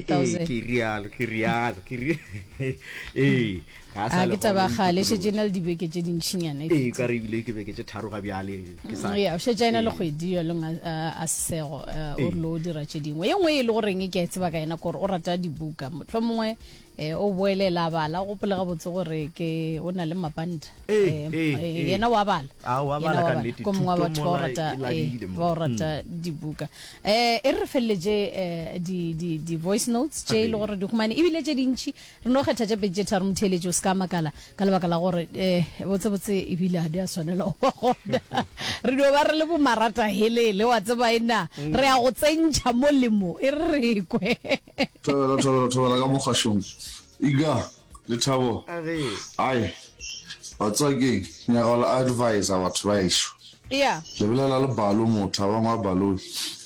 Ee, ke rialo ke rialo ke ri ee ga a sa a le ke taba gona, gale šetse e na le dibeke tše dintšhinyana e ee fetile. ka re ebile ke beke tše tharo ga bjale ke sa Mm, ya, o šetša ena le Ee. kgwedi yo leng a, a, a sego uh, o Ee. relo o dira tše dingwe ye nngwe e le goreng ke a e tseba ka yena kore o rata dibuka motlho mongwe um o boelela a bala o gopole gabotse gore ke o na le mapanta Ee, Em, ee, eh, ee. yena wa bala Ah, wa Yena bala ka nnete, ko mongwe wa thuto batho ba o mola rata e ee, labile mo. ba o rata dibuka Eh, e re re feleletše eh, di, di, di voice notes tše e le gore di humane ebile tše dintši re no kgetha tše pedi tše tharo motheeletši o se ka makala ka lebaka la gore eh, botsebotse ebile a di a swanela go ba gona re dio ba re le bomarata helele wa tseba e na re ya go tsentšha molemo e re re kwe thobela thobela thobela ka mokgwašong iga Lethabo, Ai, wa tswa keng, nyaka le advisor batho ba ešo. Ea. Le bolela le Balo motho a bangwe a Baloi.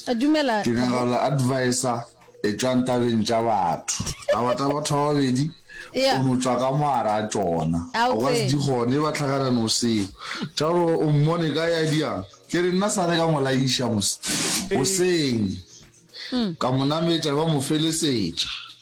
A dumela. Ke nyaka le advisor etšwang tabeng tša batho. Taba tsa batho ba babedi o no tswa ka moara a tšona. A o ka se di kgone ba tlhakana no seo. Thabo, O mmone kae a diang? Ke re nna sale ka mo laiša mos, goseng. Ka mo nametša ba mo felesetša.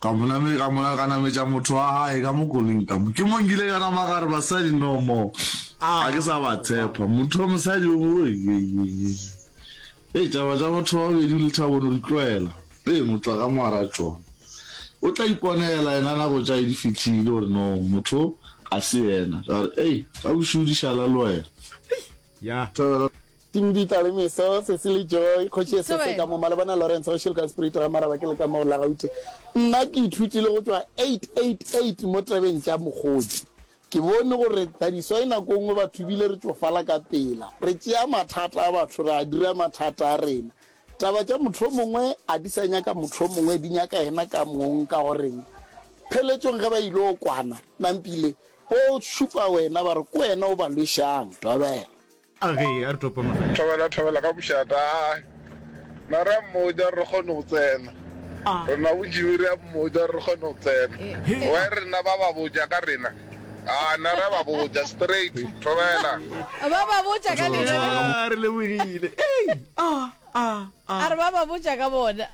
ka mo name ka mona ka nametša motho wa gae ka mo koling ka mo ke mo nkile ka nama gare basadi no mo ga ke sa ba tshepa motho wa mosadi o e taba tša batho ba babedi le thabono di tlwaela ee motla ka moara tsona o tla iponela yena nako tša e di fitlhile gore no motho ga se yena ka gore ei ka bošodišala le wena ya Tim Dieter le Meso, Cecily Joy, Kgoši Esese ka mo Malebana Lawrence, Kgoši le ka Spirito ga Maraba ke le ka mo Lagaute. Nna ke ithutile go tšwa 888 mo tabeng tša Mokgotsi. Ke bone gore Tadiswai nako nngwe batho bile re tšofala ka pela. Re tšea mathata a batho ra a dira mathata a rena. Taba tša motho o mongwe a di sa nyaka motho o mongwe, di nyaka yena ka mong. Ka goreng? Pheletšong ge ba il'o kwana, Nampile, bo šupa wena ba re ko wena o ba lwešang. Dobela. A ge a re topo magae. Thobela, thobela ka mošata. A na re a mmotša re kgone go tsena. A. Rena bodibe re a mmotša re kgone go tsena. He. Why rena ba ba botša ka rena? A na re a ba botša straight. Thobela. Ba ba botša ka lena. A re lebogile. Ei! A, a, a. A re ba ba botša ka bona.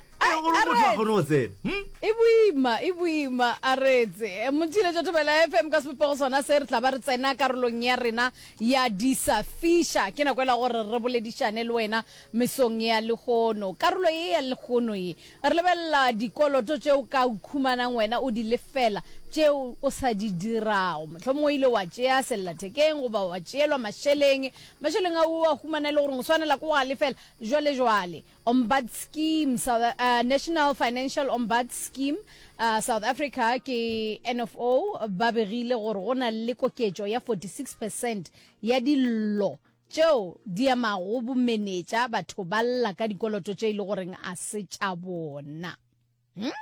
e boima e boima a retse motšhile jo thobela fm ka sebopego sona se re tla ba re tsena karolong ya rena ya disa fisha ke nako ela gore re boledišane le wena mesong ya legono karolo ye ya legono ye re lebelela dikoloto tše o ka ukhumanang wena o di lefela tšeo o sa di dirago mohlomong o ile wa tšea sellathekeng goba wa tšeelwa mašeleng mašeleng a o a humana e le gore o swanela ke go a lefela jwale jwale Ombud Scheme South, uh, National Financial Ombud Scheme uh, South Africa ke NFO ba begile gore go na le koketšo ya 46 percent ya dillo tšeo di amago bomenetša batho ba lla ka dikoloto tše e le goreng a se tša bona. Hmm?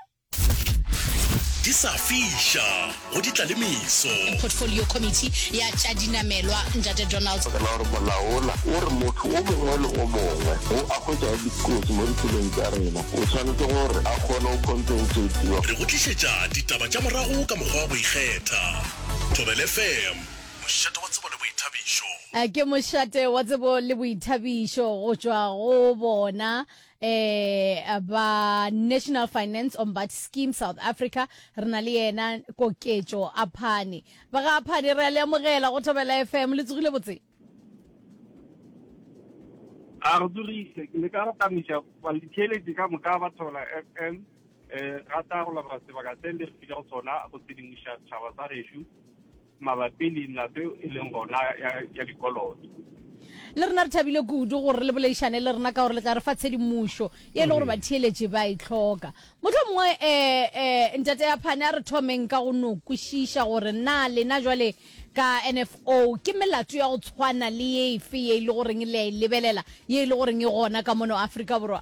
di sa fiša go ditlalemiso portfolio committee ya tša dinamelwa ntate donald Ka la gore molaola o re motho o mongwe le o mongwe o a hwetšago dikotsi mo ditseleng tša rena o tshwanetse gore a kgone go compensatiwa re go tlišetša ditaba tša morago ka mokgwa wa go ikgetha Thobel FM, mošate wa tsebo le boithabišo. Ke mošate wa tsebo le boithabišo go tšwa go bona Eh, ba National Finance Ombud Scheme South Africa, re na le yena Koketšo Aphane. Ba ga Aphane re a le amogela go Thobela FM, le tsogile botse? A re tsogile, ke leka go tamiša balitheletše ka moka ba Thobela FM, eh, rata go leboga sebaka se le re file go sona go tshedimoša setšhaba sa gešo. mabapi le nna seo e leng gona ya, ya dikoloto. Le rena re thabile kudu gore le boleišane le rena ka gore le tla re fa tshedimošo ye e le gore batheeletši ba e tlhoka. Mohlho mongwe um eh, um eh, ntate ya phane a re thomeng ka go no kwešiša gore na lena jwale ka NFO ke melato ya go tshwana le ye efe ye e le goreng le a e lebelela ye e le goreng e gona ka mono Afrika Borwa.